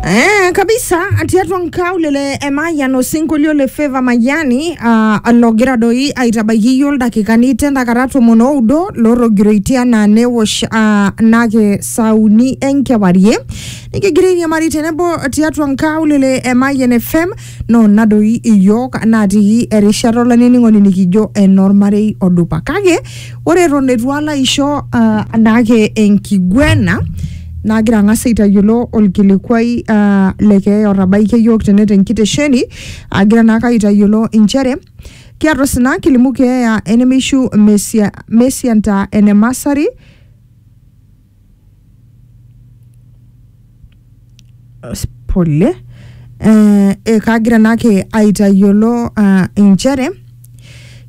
Eh, kabisa atiatua nkaule le emayian osinkolio le feva mayiani uh, logira doi aitabaiki iyio ildakikani tendakata tomon oudo lorrogiroitie anaa newosh uh, nake sauni enkewarie nikigira airiamari tenebo tiatua nkaulele emayian fm no na doi iyiook natii erishata olainining'oni nikijo enormarei odupa kake ore eton eitu alo aisho uh, anaake enkiguena nagira ang'as aitayiolo olkilikuai uh, le keeya otabaikia iyiook tene tenkitesheni agira naake aitayiolo inchere kiata osina kilimu keeya enemeishu mesia mesianta enemasari pole eh, eh, kagira naake aitayiolo ah, inchere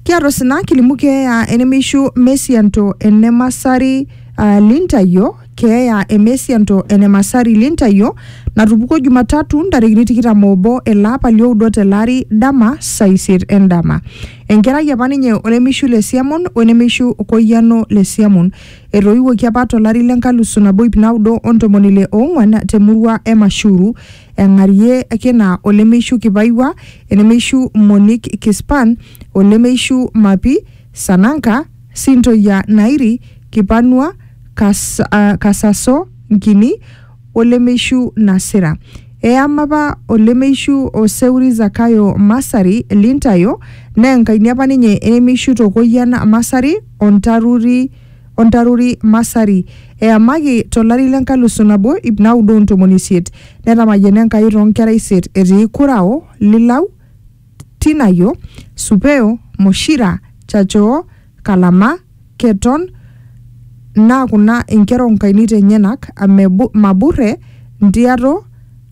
kiata osina kilimu keeya enemeishu mesianto enemasari ah, lintayo keeya emesianto enemasari lintayo natupukuo jumatatu ntarikini tikitam obo ele apa lioudo tele ari dama saa isiet endama enkerai apa ninye olemeishu le siamon wenemeishu koyiano le siamon Etoiwuoki apa to lari le nkalusu nabo ip naudo o ntomoni ile oong'uan te murua e Mashuru, Eng'arie Kina o Lemeishu Kipaiwua, Enemeishu Monik Kispan o Lemeishu Mapi, Sananka, Sintoyia Nairi, Kipanua, Kas, uh, Kasaso Nkini o Lemeishu Nasira. Eyama apa o Lemeishu o Seuri Zakayo Masari Lintayo, naa enkaini apa ninye e Nemeishu Tokoyian Masari, o ntaruri o ntaruri Masari. Eyamaki to lari le nkalusu nabo ip naudo o ntomoni isiet. Netamayiana Enkai too nkera isiet etii Kurao, Lilau, Tinayo, Supeo, Moshira, Chachoo, Kalama, Keton, naa kuna inkera o nkainit enyenak, Maburre, Ntiato,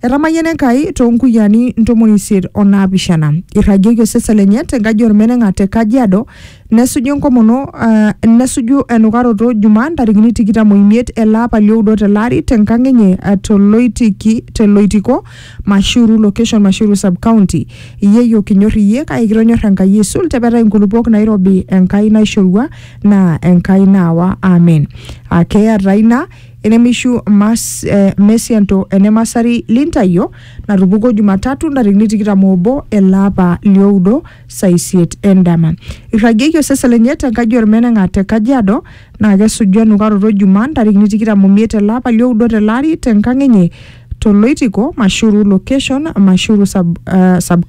Etamayiana Enkai too nkuyiani ntomoni isiet o naapishana. Eirragieki osesen lenye te nkaji olmeneng'a te Kajiado nesuju enkomono uh, nesuju enukaroto Jumaa ntarikini tikitam o imiet ele apa lioudo tele ari te nkang enye uh, to Loitiki te Loitiko Mashuru location Mashuru sub county. Yieyo kinyor iyie kake kitonyor Enkai aisul te petai nkulupuok nairobi Enkai naishorua naa Enkai naawa amen. Uh, keeya taa ina enemeishu mas, eh, mesianto enemasari lintayio natupukuo Jumatatu ntarikini tikitam obo ele apa lioudo saa isiet endama. Irragieki osesen lenye te nkaji olmeneng'a te Kajiado naa kesuju enukaroto Jumaa ntarikini tikitam omiet ele apa lioudo tele ari te nkang enye to Loitiko, Mashuru location, Mashuru sub, uh, sub